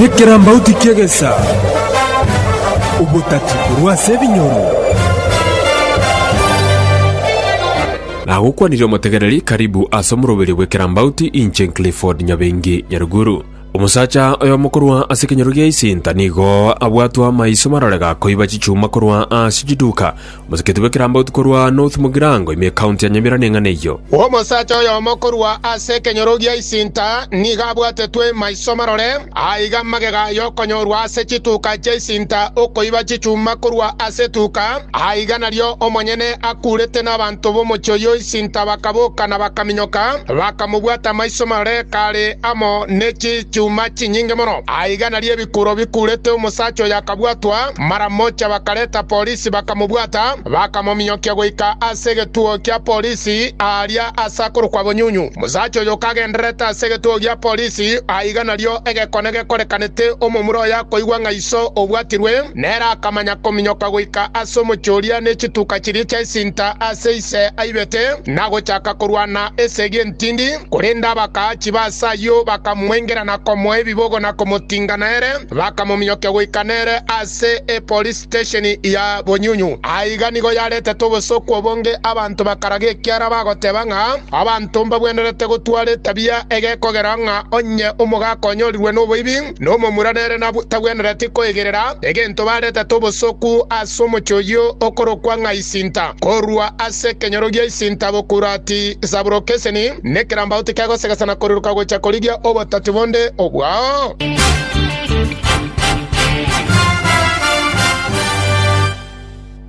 Nekerambauti ki'egesa, obotati korwa ase ebinyoro. Nagokwanirie omotegereri, Karibu ase omoroberio bw'ekerambauti, inche Clifford Nyabengi Nyaruguru. Omosacha oyomo korwa ase ekenyoro gia Isinta nigo abwatwe amaiso marore gakoiba chichuma korwa ase chiduka, Moseketi bw'ekerambauti korwa North Mugirango ime County ya Nyamira neng'ana eyio. Omosacha oyomo korwa ase ekenyoro gia Isinta nigo abwatetwe maiso marore, aiga magega y'okonyorwa ase chituka chia Isinta okoiba chichuma korwa ase etuka, aiga nario omonyene akuurete nabanto b'omochie oyio Isinta bakaboka na bakaminyoka, bakamobwata maiso marore kare amo ne chichuma chinyinge mono, aiga nario Ekuro bikurete omosacha oyo akabwatwa, mara mocha bakareta polisi bakamobwata, bakamominyokia goika ase egetuo kia polisi aaria ase akorokwa Bonyunyu. Omosacha oyo kagendererete ase egetuo gia polisi, aiga nario egekone gekorekanete omomura oyo akoigwa ng'a iso obwatirwe, nere akamanya kominyoka goika ase omochie oria ne chituka chiria chia esinta ase ise aibete, na gochaka korwana esegi entindi. Korende abakaachi ba ase ayio bakamwengera na komoa ebibogo na komotinga nere, bakamominyokia goika nere ase epolisi stesheni ya Bonyunyu. Aiga nigo yaretetwe obosooku obonge, abanto bakaraga ekiara bagoteba ng'a abanto mbabwenerete gotwara etabia egekogera ng'a onye omogaaka onyorirwe noboibi, Nomomura nere tagwenereti koigerera egento barete tobosoku ase omochie oyio okorokwa ng'a Isinta, korwa ase ekenyoro gia Isinta gokurwa ati Sabulokeseni, nekerambagu tikegosegesana na koriroka gocha korigia obotati bonde obwao.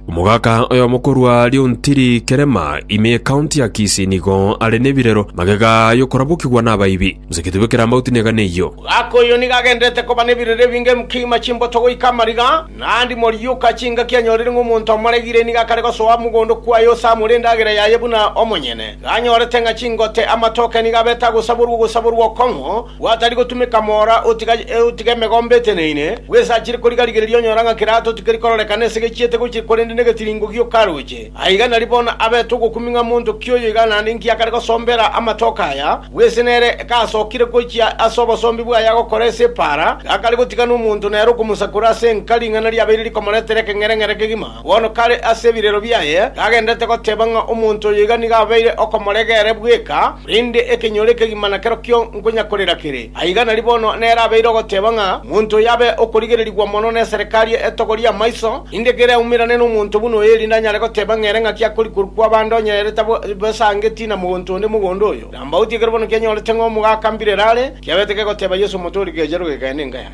Omogaka oyomo korwa Lyontiri, Kerema, ime y'Ekaunti ya Kisii, nigo are nebirero magega y'okorabokigwa nabaibi. Mosaketie bw'ekeramauti negane eyio. Omogaka oyio nigo agenderete koba nebirero ebinge, emkima, chimboto goika amariga, naende morioka chingaki anyorire ng'a omonto amoregire nigo akare gosoa mogondo kwaye ose amore endagera yaye buna omonyene. Iga anyorete ng'a chingote, amatoke nigo abete agosaborwa ogosaborwa okong'u, Gwatari gotumeka moora otiga otiga emegombe eteneine, bwesachire kori garigereria onyora ng'a kerato tikeri kororekana ase gechiete gochia korende negetiringo giokaroche. Aiga nari bono abete ogokumi ng'a monto ki oyo iga naende inki akare gosombera amatoke aya, bw'ense nere gasokire gochia ase obosombi bwaye agokora ase epaara, gakare gotiga nomonto nere okomosakora ase enka ring'ana riabeire rikomoretera ekeng'ereng'ere kegima. Na bono kare ase ebirero biaye tagenderete goteba ng'a omonto oyo iga nigo abeire okomorega ere bweka, korende ekenyoro ekegima nakerokio nkonyakorera kere. Aiga nari bono nere abeire ogoteba ng'a omonto oyo abe okorigererigwa mono neserikari etogo ri'amaiso, erinde kere aumerane nomonto buna oyo, erinde anyare goteba ng'a ere ng'aki akori korwa kwaba ande onye ere tabosangetie na mogonto onde mogondo oyo. Kirambauti ekero bono kianyorete ng'a omogaka mbirere are, kiabete kegoteba Yeso, Omotooriki, echa rogeka, ende nkaya.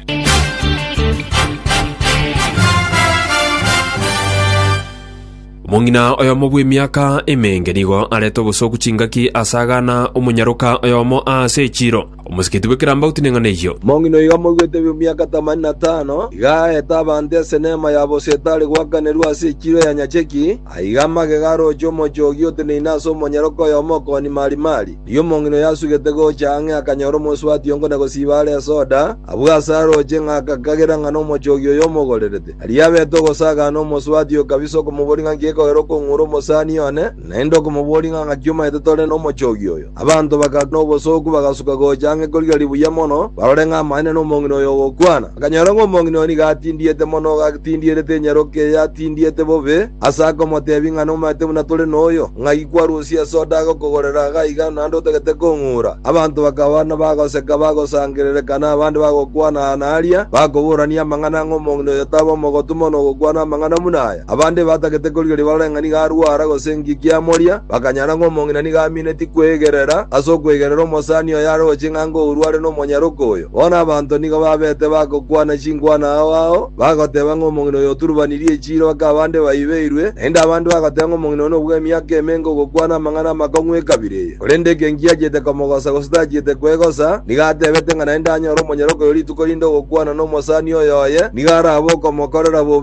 Omong'ina oyomo bw'emiaka emenge nigo arete obosoku chingaki ase agana omonyaroka oyomo aase echiiro. Omosigeti bw'ekerambagu tineng'ana eyio. Omong'ina oyo omoruete bw'emiaka tamani na tano iga aete abanto esenema ya bosetari goakanerwa ase echiiro ya nyacheki, Aiga amagega arooche omochie ogia oteneine ase omonyaroke oyomo okooni marimari. Erio omong'ina oyo asugete gocha ang'e akanyora omosubati ongo na gosiiba are esoda, abwo ase arooche, ng'a agakagera ng'a nomochie ogia oyo omogorerete. Aria abete ogosagana, omosubati oyo kabisa okomoboria ng'a nki gekogera okong'ura omosani one, naende okomoboria ng'a ng'aki omaete tore nomochie ogia oyo. Abanto bakaga nobosooku bagasuka gocha ang'e korigia ribuya mono, barore ng'a amaene nomong'ina oyo ogokwana. Bakanyora ng'a omong'ina oyo nigo atindiete mono gatindierete enyaroka eye atindiete bobe, ase akomoteebia ng'a nomanyete buna tore noyo, ng'ai kwarusia esoda agokogorera iga iga naende otagete kong'ura? Abanto bakaba nabagoseka bagosangerereeka na abande bagokwana aa na aria, bakoborania amang'ana ng'a omong'ina oyo tabe omogotu mono ogokwana amang'ana buna aya. Abande batagete korigia ribarore ng'a nigo arwara gose enki kiamoria, bakanyara ng'a omong'ina nigo amineti kwegerera ase okwegerera omosani oyo are oo ching'a ng'a orua are nomonyaroke oyo. Bono abanto nigo babete bagokwana chinkwana ao ao, bagoteba ng'a omong'ina oyo oturubanirie echiiro ake abande baibeirwe, naende abande bagoteba ng'a omong'ina oyo nobua emiaka emenke ogokwana amang'ana amakong'u ekabira eye. Korende ekenki achiete komogosa gose tachiete kwegosa, nigo atebete ng'a naende anyore omonyaroke oyo rituko rinde ogokwana nomosani oyo oye nigo arabe okomokorera bobe,